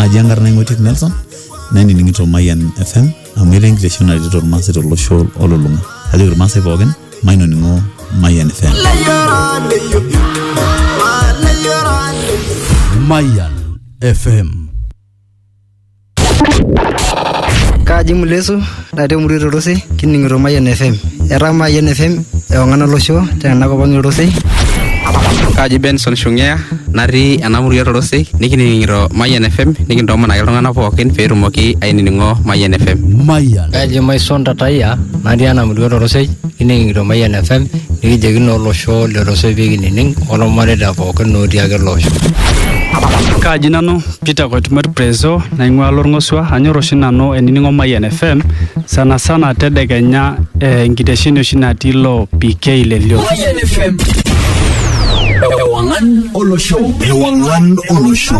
aji enkarna ing'oitiek nelson nainining'ito mayian fm amu etaa enkitesheni naretito irmaasai tolosho olulung'a ajoki irmaasai pookin mainoning'o mayian fm Mayan FM. Kaji Mulesu Ore te murua e Torosei kining'ito Mayian FM. Etaa Mayian FM ewang'an olosho tena kop ang e Torosei. Kaji Benson Shung'ea natii ena murua e Torosei nikining'ito Mayian FM nikintoomon ake iltung'anak pookin pee etumoki ainining'o Mayian FM. Mayian. Kaji Maison Tatayia natii ena murua e Torosei kining'ito Mayian FM nikijoki naa olosho le Torosei pee kinining olmareita pookin otii ake ele osho. Kaji nanu Peter Koitumert Prezo naing'ua Lorng'osua. Anyor oshi nanu ainining'o Mayian FM sana sana tedekenya eh, enkitesheni oshi natii ilo PK le Lio. Mayian FM. Ewang'an olosho. Ewang'an olosho.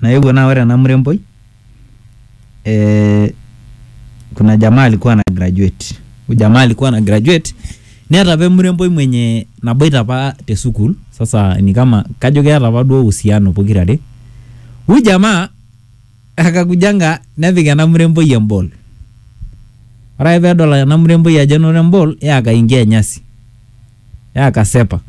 naewuo naa ore ena muremboi eh, kuna jamaa alikuwa na graduate huyu jamaa alikuwa na graduate neeta apa emuremboi mwenye naboita apa te sukuul sasa ni kama kajo keeta apa duo uhusiano pokirare huyu jamaa akakujanga nepik ena muremboi embol ore ake peedol ena muremboi ajo enoto embol yee akaingia nyasi. yaa kasepa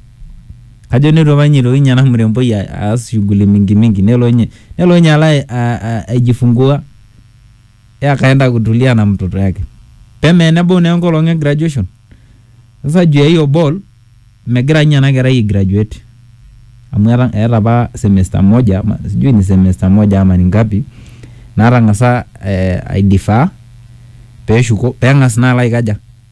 kajo neitu apa ninye eitoki ninye ena mremboi a- aas shughuli mingi mingi nelo ninye nelo ninye alo ai- a- a- aijifungua yaa kaenda kutulia na mtoto yake peme enebau naa enkolong e graduation sasa juu ya hiyo ball megira ninye ena kerai ai graduate amu eta eeta apa semester moja ama sijui ni semester moja ama ni ngapi natang'asa eh, aidifaa peshuko peng'as naa alo aikaja.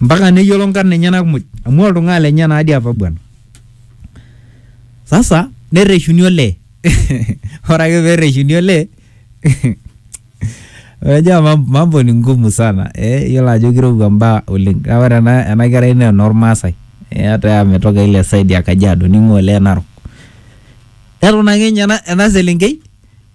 mpaka neyiolo nkarn enyenak muj amu oltung'ani lenye naadi apa bwana sasa nerreshuni olee ore ake perreshuni olee Unajua mam- mambo ni ngumu sana eh, yiolo ajo kirowua mbaa oleng kake ore ena, ena kerai naa enormaasai eh, hata ametoka ile side ya Kajiado ning'ua olee Narok eton ake ninye ena, ena selenkei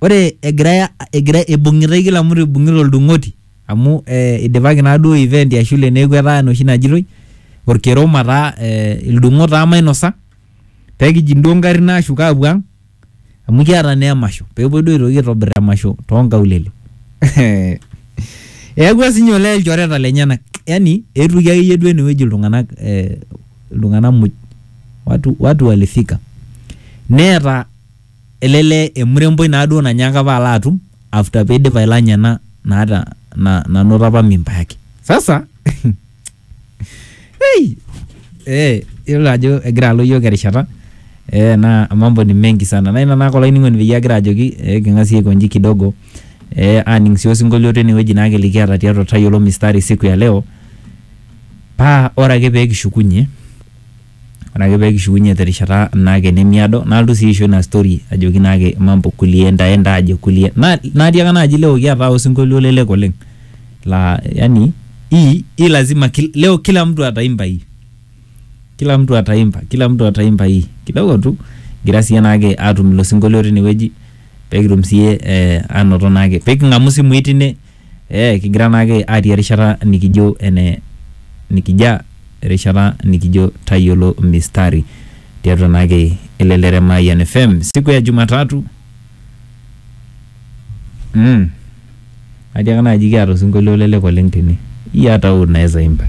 ore egirai egira ibung'itai kila mtu ibung'ita oldung'oti amu eh, idipaki naa duo event ya shule neeku etaa enoshi najitoi orkerom ataa eh, ildung'ot taa mainosa pekijing duo ngarrin ashuk apuo ang amu kiata naa emasho pepuoi duo aitoki aitobirr emasho tonkaulele eyawua sinye olee ilchoreta lenyenak yani eetuoki akeyie duo enewueji iltung'anak eh, iltung'anak muj watu, watu walifika neeta ele lee emuremboi naa duo nanyaaka apa alo atum after peidip ailanya ena naata na, nanoto apa mimba yake sasa hey, eh, yiolo ajo egira alo yiok erishata eh, na mambo ni mengi sana na ina naake olainining'oni peyie agira ajoki eh, king'asie aikonji kidogo eh, aning sii osinkolio tinewueji naake likiata tiatua tayiolo mistari siku ya leo paa ore ake pee kishukunye ore ake peekishukunye terishata naake nemiado nalotu sii aisho ina story ajoki naake mambo kulie enda enda aje kulie na natiaka naaji leo kiata osinkolio lelek oleng laa yani hii hii lazima kil, leo kila mtu ataimba hii kila mtu ataimba kila mtu ataimba hii kidogo tu kigira siye naake atum ilo sinkolio tinewueji pekitum siye eh, anoto naake peking'amu isimui tine Ee kigira naake atii erishata nikijo ene nikija erishata nikijo tayiolo mistari tiatua naake elelere Mayian FM siku ya Jumatatu. Mm. Atiaka naaji kiata osinkolio lelek oleng tene. Iyata hoo unaweza imba.